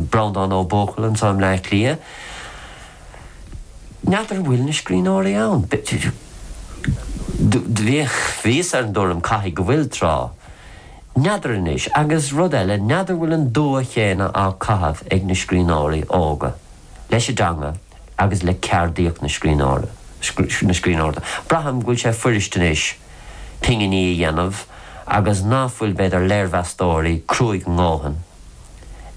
Breandán Ó Buachalla anseo i mBleá Cliath. N'fheadar an bhfuil na scríbhneoirí ann? Bhíos ar an dtuairim caithfidh go bhfuil tráth. N'fheadar anois. Agus rud eile, n'fheadar bhfuil an dua chéanna á caitheamh ag na scríbhneoirí óga leis an dteanga agus le ceardaíocht na scríbhneoireachta. Braithim go bhfuil sé fuirist anois pinginí a dhéanamh agus ná fuil, b'fhéidir, léirmheastóirí cruaidh a ndóthain ann.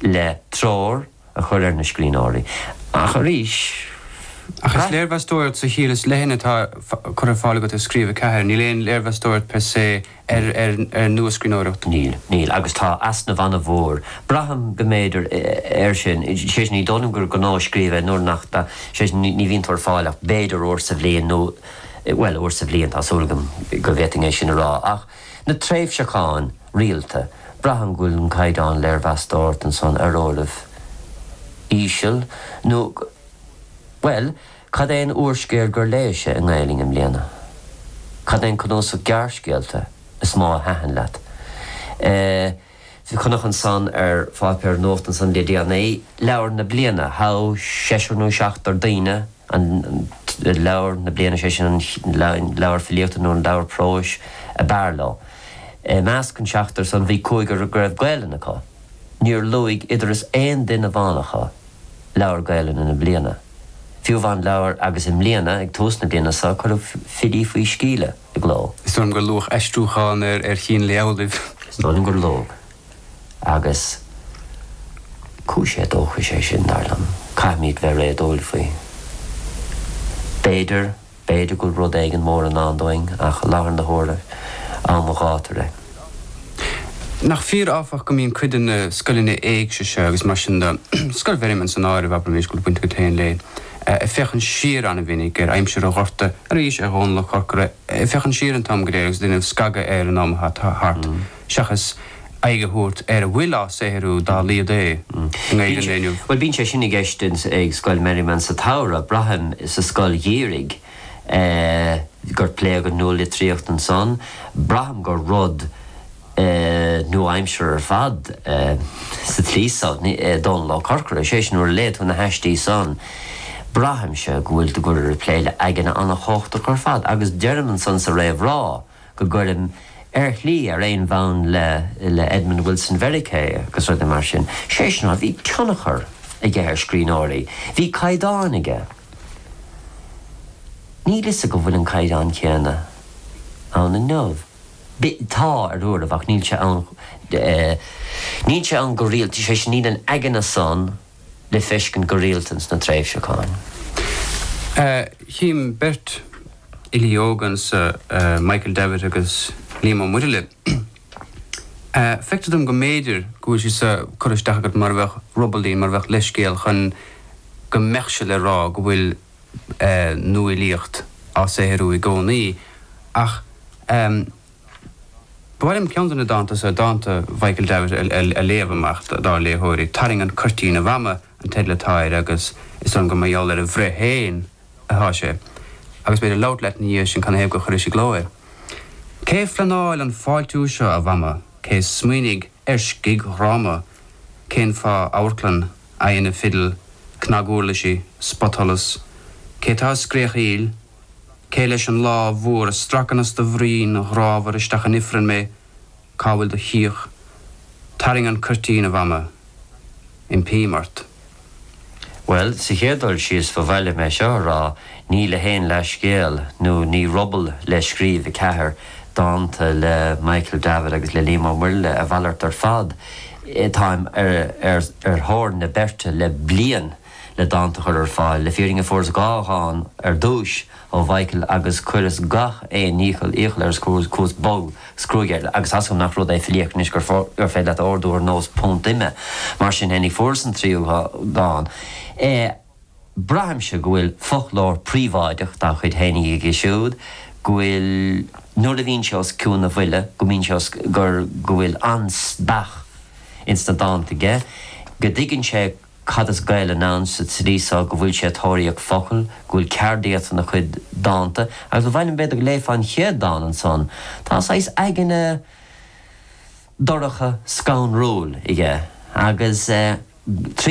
le treoir a chur ar na scríbhneoirí ach arís. Ach is léirmheastóireacht sa chiall is leithne atá curtha ar fáil agat i Scríobh 4, níl aon léirmheastóireacht per se ar nuascríbhneoireacht. Níl, níl agus tá easnamh an-mhór. Braithim go mb'fhéidir air sin, sé sin ní dóigh liom gur gnó Scríobh é nuair nach, sé sin ní bhíonn tú ar fáil ach b'fhéidir uair sa bhliain nó bhuel uair sa bhliain tá súil agam go bhféadfainn é sin a rá ach Na tréimhseacháin rialta, braithim go bhfuil an caighdeán léirmheastóireachta san ar uairibh íseal nó go Bhuel, cad é an úrscéal gur léis-se i nGaelainn i mbliana? Cad é an cnuasach gearrscéalta is mó a thaitin leat? Eh. Bhí cnuasach ansan ar pháipéar nuacht ansan le déanaí, Leabhar na Bliana, hm, seisear nó seachtar daoine, an Leabhar na Bliana, sé sin an leabhar filíochta nó an leabhar próis a b'fhearr leo. I measc an seachtair san bhí cúigear go raibh Gaelainn acu. Níor luaigh dar ndóigh aon duine amháin acu Leabhar Gaelainne na Bliana. Fiú amháin leabhar agus i mbliana, ag tús na bliana so, cuireadh Filí faoi Sceimhle. i gcló. Is dóigh liom gur luadh aistriúchán ar Chín Lae Amhlaoibh. Is dóigh liom gur luadh. Agus cúis éadóchais é sin, dar liom. Caithfimid bheith réadúil faoi. B'fhéidir, b'fhéidir go bhfuil rud éigin mór i ndán dúinn ach i láthair na huaire, am an ghátair é. Nach fíor áfach go mbíonn cuid de na scoileanna éigse seo agus mar sin de, Scoil Mherriman san áireamh, abraimis, go bhfuil baint agat féin léi, ag féachaint siar an-mhinic ar aimsir an Ghorta, arís ar Dhomhnall Ó Corcora, ag féachaint siar an t-am go léir agus ag déanamh scagadh ar an am atá thart seachas aghaidh a thabhairt ar a bhfuil á saothrú dá laghad é i nGaeilge an lae inniu. Bhuel bíonn sé sin i gceist ag Scoil Merriman sa tsamhradh, braithim, sa scoil gheimhridh. gur pléadh an nualitríocht ansan. Braithim gur rud nua-aimseartha ar fad sa tslí san é Dónall Ó Corcora. Is é sin, nuair a léann tú na haistí san, braithimse go bhfuil tú ag plé le haigne an-chumhachtach ar fad agus deirim ansan sa réamhrá, go gcuirim, ar shlí, ar aon bhonn le, le Edmund Wilson Mheiriceá agus rudaí mar sin. Sé sin, bhí tionchar aige ar scríbhneoirí. Bhí caighdeán aige. Níl 'fhios agam bhfuil an caighdeán céanna ann inniu. Bhí, tá, ar uairibh ach níl sé ann, níl sé ann go rialta, sé sin níl an aigne san le feiscint go rialta ins na tréimhseacháin. Chím beirt fhilí óga anso, Michael Davitt agus Liam Ó Muirthile. Feictear dom go mb'fhéidir go bhfuil siad so curtha isteach agat mar a bheadh ruballín, mar a bheadh leithscéal chun go mbeadh sé le rá go bhfuil nuafhilíocht á saothrú i gcónaí. Ach. Ba mhaith liom ceann de na dánta so, dánta Mhichael Davitt a léamh amach dár léitheoirí. Tarraing an Cuirtín, a Mhama an teideal atá air agus is dóigh liom gur mar gheall ar a bhreith féin atá sé. Agus b'fhéidir labhairt leat ina dhiaidh sin canathaobh gur chuiris i gcló é. Cé phleanáil an fáiltiú seo, a Mhama? Cé smaoinigh ar scigdhráma? Cén fáth amharclann, aghaidheanna fidil, cnaguirlisí, spotsholas? Cé tá ag scréachaíl? Cé leis an lámh mhór a stracann as do bhroinn ghrámhar isteach in ifreann mé? Cá bhfuil do chíoch? Tarraing an cuirtín, a Mhama. Impím ort. Bhuel, sa chéad dul síos ba mhaith liom é seo a rá, ní le haon leathscéal nó ní ruball le Scríobh 4 dánta le Michael Davitt agus le Liam Ó Muirthile, a mhalairt ar fad, táim ar thóir na beirte le bliain. le dánta a chur ar fáil. Le fírinne fuaireas dhá dhán ar dtúis ó Mhichael agus chuireas gach aon iachall, iachall air is chuas bog is cruaidh air agus tá fhios agam nach rud é filíocht anois gur féidir leat a ordú ar nós púnt ime. Mar sin fhéinig fuaireas an tríú dán. Braithimse go bhfuil foclóir príobháideach dá chuid fhéinig aige siúd, go bhfuil nuair a bhíonn sé os cionn a bhuille go mbíonn sé os, go, go bhfuil an-speach ins na dánta aige, go dtuigeann sé. Cad is Gaelainn ann sa tslí so, go bhfuil sé ag tóraíocht focal, go bhfuil ceardaíocht ina chuid dánta, agus ba mhaith liom b'fhéidir go léifeá an chéad dán ansan. Tá saghas aigne dorcha, scanrúil aige, agus eh, tríd an.